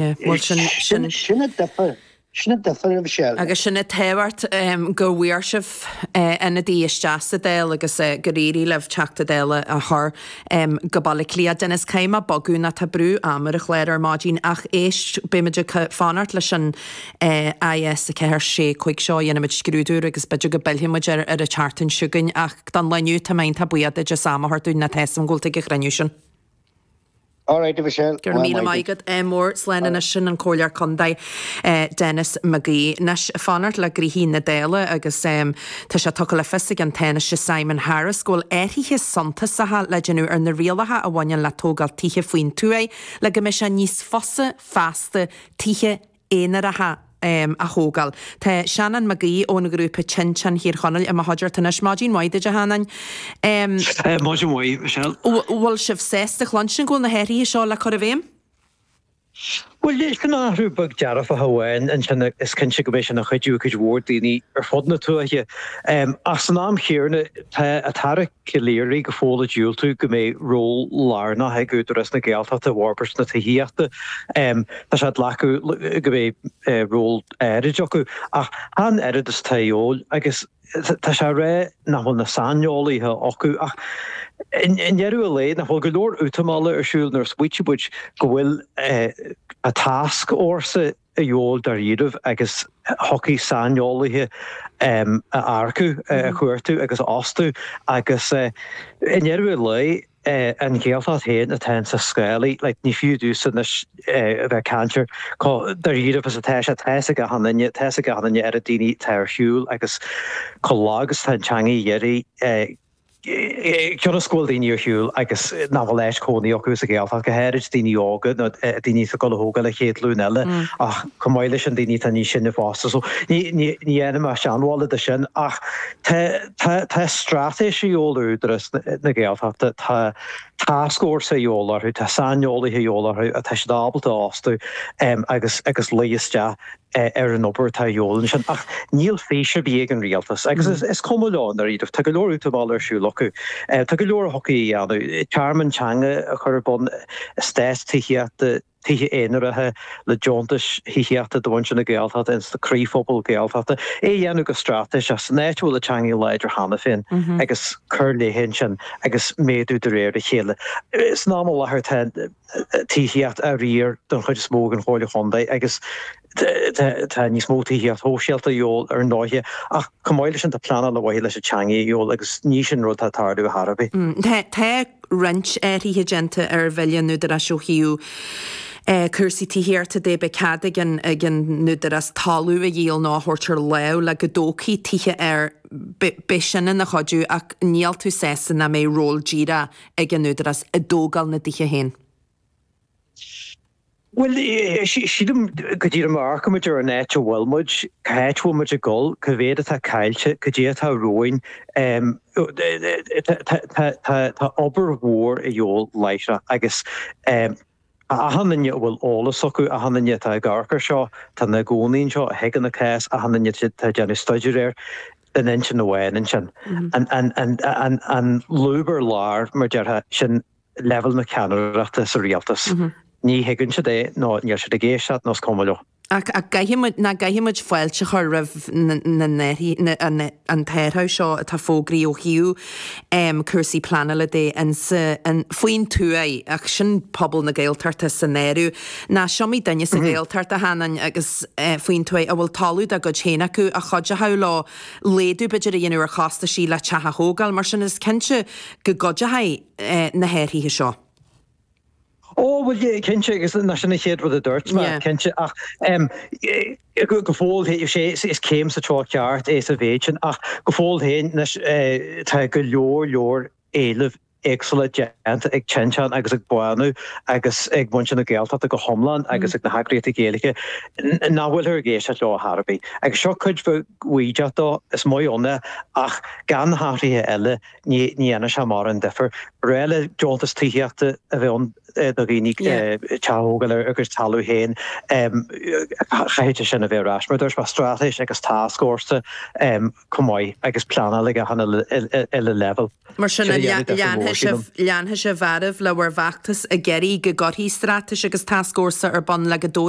Sin a duifear, sin a duifear a Mhichelle. Agus sin an tábhacht go bhfuair sibh ionadaí isteach sa Dáil agus gur éirigh libh Teachta Dála a chur go Baile Átha Cliath. Denis, caithfidh mé bogadh nó tá brú ama ar an chlár ar maidin ach éist, beimid ag fanacht leis an IS 4, 6, 5 seo, déanfaimid scrúdú air agus b'fhéidir go bpillfidh muid air ar an tseachtain seo chugainn ach don lá inniu tá mé iontach buíoch duit as am a thabhairt dúinn nó tá 'fhios a'm go bhfuil tú ag an chruinniú sin. All right, a Mhichelle, Go raibh míle maith agat. Ádh mór. Slán anois. Sin an Comhairleoir Contae, Denis McGee. Anois, fanacht le gnoithí na Dála agus tá sé tugtha le fios ag an Tánaiste Simon Harris go bhfuil athruithe suntasacha le déanamh ar na rialacha a bhaineann le tógáil tithe faoin tuath le go mbeidh sé níos fusa feasta tithe aonaracha a thógáil. Tá Seanán Mag Aoidh ón ghrúpa Tinteán Thír Chonaill i mo chuideachta anois. Maidin mhaith duit, a Sheanáin. Maidin mhaith, Michelle. Bhfuil sibh sásta chluinstin go bhfuil na hathruithe seo le cur i bhféidhm? Bhuel, leis an athrú beag dearfach amháin ansin, is cinnte go mbeidh sin ag cuidiú le cuid mhór daoine ar fud na tuaithe. Ach san am chéanna, tá an tAire. Calleary go fóill ag diúltú go mbeidh ról lárnach ag Údarás na Gaeltachta i bhforbairt na tithíochta. Tá sé ag glacadh leis go mbeidh ról áirid acu, ach chan oiread is atá a dheol, agus tá sé á rá nach bhfuil na saineolaithe acu. Ach i ndeireadh a lae, nach bhfuil go leor útamála ar siúl nuair is maíte go bhfuil tascfhórsa a dheol dáiríribh agus thiocfadh saineolaithe a earcú, a chuartú agus a fhostú agus i ndeireadh an lae an Ghaeltacht féin atá ins na scálaí. Ní fiú domhsa anois a bheith ag caint ar chomh dáiríribh is atá sé. Tá's ag achan duine, tá's ag achan duine ar na daoine atá ar shiúl agus chomh lag is atá an teangaidh dheiridh. Cionn is go bhfuil daoine ar shiúl agus nach bhfuil áit cónaí acu sa Ghaeltacht, go háirid daoine óga nó daoine atá ag gabháil a thógáil an chéad ghlúin eile ach chomh maith leis sin daoine atá níos sine fosta. So ní dhéanaim seanbhallad de sin ach tá straitéis a dheol ar Údarás na Gaeltachta, tá tascfhórsa a dheol orthu, tá saineolaithe a dheol orthu atá siad ábalta a fhostú agus luí isteach. ar an obair atá a dheol ansin, ach níl fís ar bith ag an rialtas, agus is cuma leo i ndáiríre. Tá go leor útamáil ar siúl acu. Tá go leor a thiocfaí a dhéanamh, tearmann teanga a chur ar bun, eastáit tithíochta, tithe aonaracha le deontais thithíochta do mhuintir na Gaeltachta ins na croíphobail Gaeltachta, é a dhéanamh go straitéiseach san áit a bhfuil an teangaidh láidir cheana féin agus cur léithe ansin agus méadú de réir a chéile. San am i láthair tá. tithíocht á riar den chuid is mó ag an Chomhairle Chontae agus tá níos mó tithíocht shóisialta a dhíobháil ar ndóighe ach chomh maith leis sin tá pleanáil ar mhaithe leis an teangaidh a dhíobháil agus ní sin rud atá ag tarlú ar chor ar bith. Tá roinnt athruithe déanta ar Bhille an Údaráis ó thaobh cúrsaí tithíochta de. Beidh cead ag an nÚdarás talamh a dhíol nó a thabhairt ar láimh le go dtógfaí tithe air. Beidh sin ina chuidiú ach níl tú sásta nach mbeidh ról díreach ag an Údarás i dtógáil na dtithe féin? Bhuel, sílim go díreach má amharcann muid ar an áit a bhfuil muid, cá háit a bhfuil muid ag dul, cá mhéad atá caillte, caidé atá romhainn, tá obair mhór a dhíobháil láithreach agus, Achan duine a bhfuil eolas acu, achan duine atá ag amharc air seo, atá ina gcónaí anseo, a thuigeann an cás, achan duine atá ag déanamh staidéir air, ar aon intinn amháin ansin, an lúb ar lár, mar a déarfá, sin leibhéal na ceannaireachta sa rialtas. Ní thuigeann siad é nó níl siad ag éisteacht nó is cuma leo. Ach nach gcaithfidh muid fáilte a chur roimh an t-athrú seo atá fógraithe ó thaobh cúrsaí pleanála de faoin tuaith, ach sin pobal na Gaeltachta san áireamh, nó is iomaí duine sa Ghaeltacht a chónaíonn faoin tuaith a bhfuil talamh dá gcuid féin acu a chuideochadh leo laghdú b'fhéidir a dhéanamh ar chostaisí le teach a thógáil, mar sin is cinnte go gcuideochaidh na hathruithe seo. Ó, bhuel, cinnte, agus nach sin an chéad rud a dúirt mé, cinnte, ach em go fóill féin, sé, is céim sa treo ceart é sa mhéid sin, ach go fóill féin, anois, tá go leor leor éilimh éagsúla déanta ag Tinteán agus ag Bánú agus ag muintir na Gaeltachta go hiomlán agus ag na heagraíochtaí Gaeilge nach bhfuilthear ag éisteacht leo ar chor ar bith. Agus seo cuid bheag bhaoideach dó, is maith ann é, ach gan na hathruithe eile, Ní dhéanfaidh sé mórán difir. Ba ghnách le deontas tithíochta a bheith ann do dhaoine teach a thógáil ar a gcuid talamh féin. Chaithfeadh sin a bheith ar ais, mar a dúirt mé, straitéis agus tascfhórsa chomh maith agus pleanáil ag achan uile leibhéal. Mar sin, an leanfaidh sibh oraibh le bhur bhfeachtas ag iarraidh go gcuirfí straitéis agus tascfhórsa ar bun le go dtabharfaí